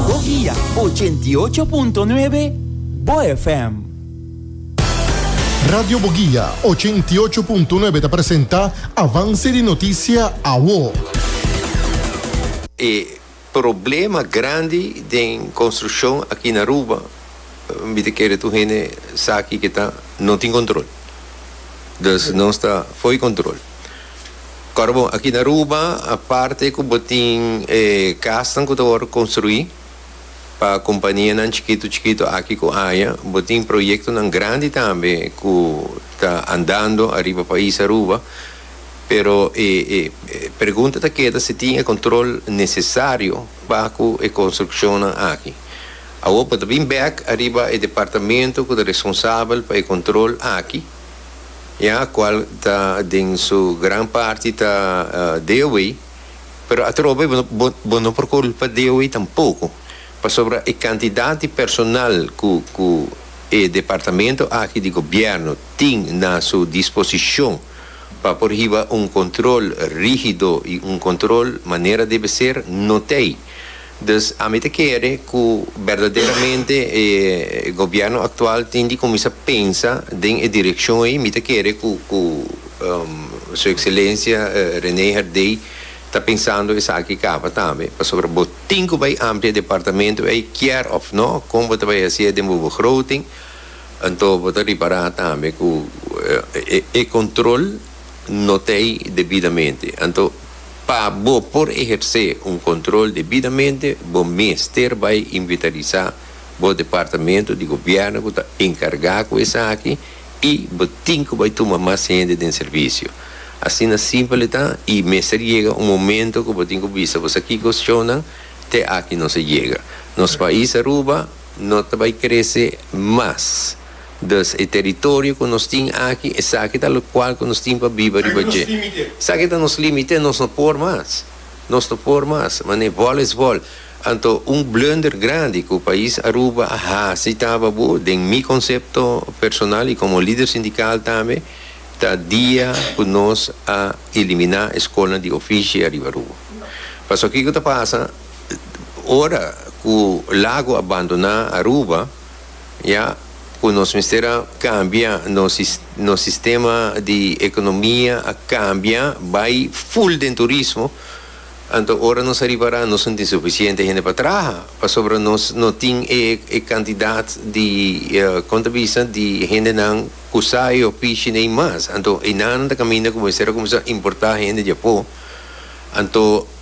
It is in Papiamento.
Bogia ochenta i ocho punto nuebe, bo FM. Radio Bogia ochenta i ocho punto nuebe ta presenta Avance di Noticia Awo. E problema grandi den construccion aki na Aruba, mi ta kere tur hende sa aki ke ta no tin control. Dus nos ta for di control. Kor bo, aki na Aruba, aparte ku bo tin e kasnan ku ta wòrdu konstruí pa kompanianan chikitu chikitu aki ku aya, bo tin proyektonan grandi tambe ku ta andando ariba pais Aruba. Pero e e pregunta ta keda si tin e kontrol nesesario pa ku e konstrukshonnan aki. Awor bo ta bin bèk ariba e departamento ku ta responsabel pa e kontrol aki, ya cual ta den su gran parti ta Dewey, pero atroba y bo bo no por culpa Dewey tampoco, pasobra e cantidad di personal cu cu e departamento aki di gobierno tin na su disposicion pa por hiba un control rigido y un control manera debe ser, no t'ey. Dus ami ta kere ku berdaderamente e gobièrnu aktual tin di kuminsá pensa den e direkshon ei. Mi ta kere ku ku Su Ekselensia René Herdé ta pensando esaki kaba tambe, pasobra bo tin ku bai amplia departamentu ei kier òf nò, kon bo ta bai hasié den bo begroting, anto bo ta ripará tambe ku e kontrol no ta ei debidamente. Anto. Pa bo por ehersé un control debidamente, bo mester bai inventarisá bo departamento di gobièrnu cu ta encargá cu esaki i bo tin cu bai tuma mas hende den servicio. Asina simpel e ta i mester yega un momento cu bo tin cu bisa boso kico sccionnan te aki nos a yega. Nos pais Aruba no ta bai crece mas. Dus, e teritorio ku nos tin aki, esaki ta lokual ku nos tin pa biba riba dje. Esaki ta nos límite, nos no por mas. Nos no por mas. Manera vòl es vòl. Anto un blunder grandi ku pais Aruba a hasi taba bo, den mi konsepto personal i komo lider sindikal tambe, ta dia ku nos a eliminá e skolnan di ofishi riba Aruba. Pasobra kiko ta pasa? Ora ku Lago a bandoná Aruba. ya cu nos mester a cambia nos nos sistema di economia a cambia bay full den turismo anto ora nos a ripara nos no tin suficiente hende pa traha pasobra nos no tin e e cantidad di con ta bisa di hendenan cu sa y ofishi ney mas anto enan ta caminda cu bo mester a cuminsa importa hende di apo anto